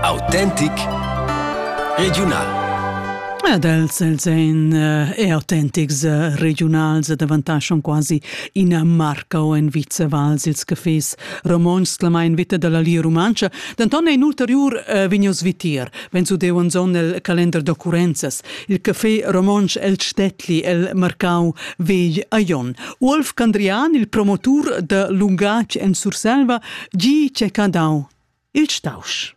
Autentic regiunal. Ed els els ein eh, autentics eh, regionals davantaschon quasi ina marca o en Vizevals ils cafés romonts clamà in vita dalla Lia Rumantscha. Denton ein ulteriur eh, vegnius vitier, wenn su deu zon el calender d'occurrenzas. Il café romontsch el Stettli el marcau vegl a Jon. Uolf Candrian, il promotur da lungatg en Surselva, gi ch'è dau il stausch.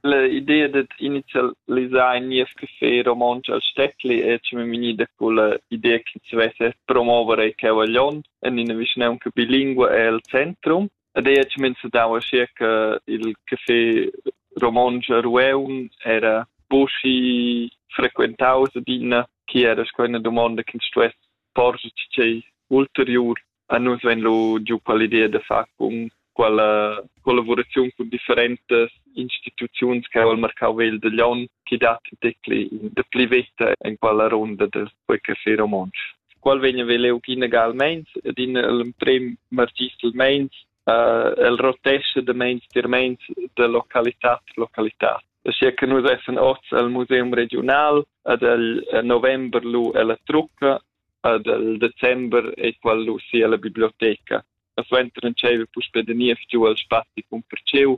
L'idea dad inizialisar in niev café romontsch al Steckli è che mi da quella idea che si vesse promuovere il Cavaglion en ina vischnaunca bilingua el centrum. Ed ei ha cuminzau aschia che il café romontsch a Rueun era buca frequentaus adina, che era sco ina domanda che stuess porscher tschei ulteriur. A nus vegn lu giu quell'idea da far cun quella collaboraziun cun differentas instituziuns che ha il marcau vegl da Lyon, che dat detgli da pli veta en quella ronda del quei café romontsch. qual vegn a veler inegalmeins ed in l'emprem margist meins uh, el rotesce de meins tier meins de localitat localitat. Sia che nus essen oz al Museum Regional ad el november lu ella trucca ad el december e qual lu sia la biblioteca. Suenter en tscheive puspe de niev giu al spazi cun perceu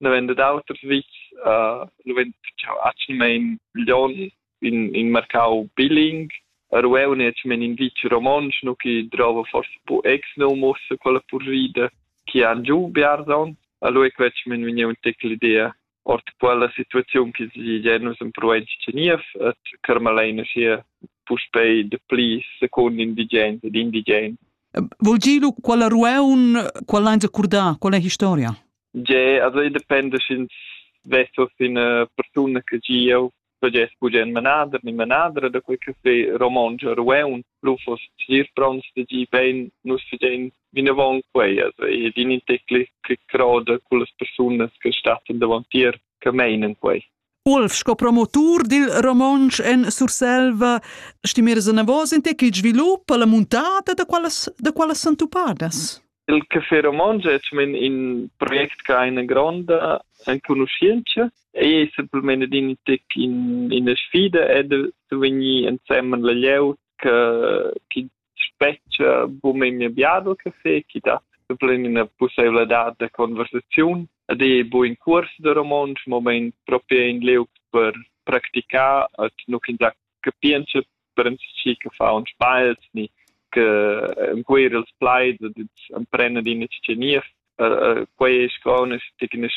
ne venda d'auters vis, uh, nu vend chau atschelmaing milion in, in mercau biling, Rueu ne men in vic romontsch, nu chi drova forse bu ex num ussa quella purrida chi han giu biarzon, a lui quetsch men vegniu un tec l'idea ort quella situaziun che si genus in province Geniev et Carmalaina sia puspei de pli secund indigens ed indigens. Vol gi lu quella rueun, quella ein accordà, quella historia? Ge, also i dependa sch'ins vesa ina persuna che gieu pagess bugen manader ni manadra da quei caffé romontsch a Rueun. Lu fos sir pronts da gi bein nus fidein vinavon quei, also e din in tecli che croda con las persunas che stattan davantier che meinen quei. Ulf sco promotur dil romontsch en Surselva stimeras anavos in te ch'il svilup alla muntada da quallas da quallas sentupadas. Il Café Romontsch è men in project che ha una gronda enconoscenza e è semplicemente in tic in, in sfida è de, de venir ensemen la glieud che, che spetg bun memia biado caffé chi dat plain ina pussaivladad da conversaziun ed è buin cuors da romontsch moment proprio in liug per practicar et nu ins capientscha per chi che fa uns bals ni che encuir els plaids ed ins emprena d'ina tschenia quei è sco una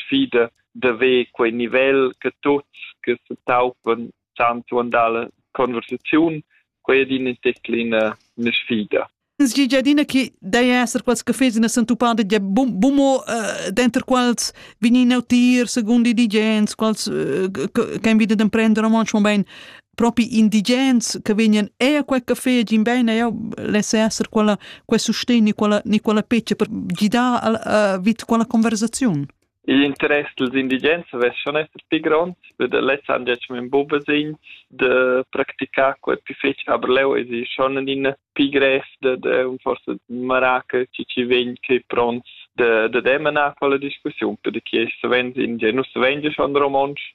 sfida da ver quei nivel che tuts che se taupen chan suandar la conversaziun, quei din in teclina una sfida. Sgigiadina che dai esser quals cafés ina sentuppada ja bum bumo denter quals vegnin a utir secondo indigens, quals can vida d'emprender romontsch mobein propi indigens che vegnan e a quel café gin bein e lesse esser quella quel sustegn ni quella ni quella peccia per gidar vid quella conversaziun. Igl interess dals indigens saveschan esser pli gronds, be da lezs han detg men bubasegns da practicar quei pli fetg, aber leu esi schon en in pli grev da, da un forsa maraca che ci vegn che pronts da, da demanar quella discussiun, per che savens indigen, nus savens schon romontsch,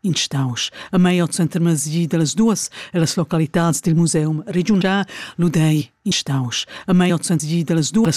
in stausch a mei ot center masi dallas duas e las localitads dil museum regiunal lu dei in stausch a mei ot center dallas duas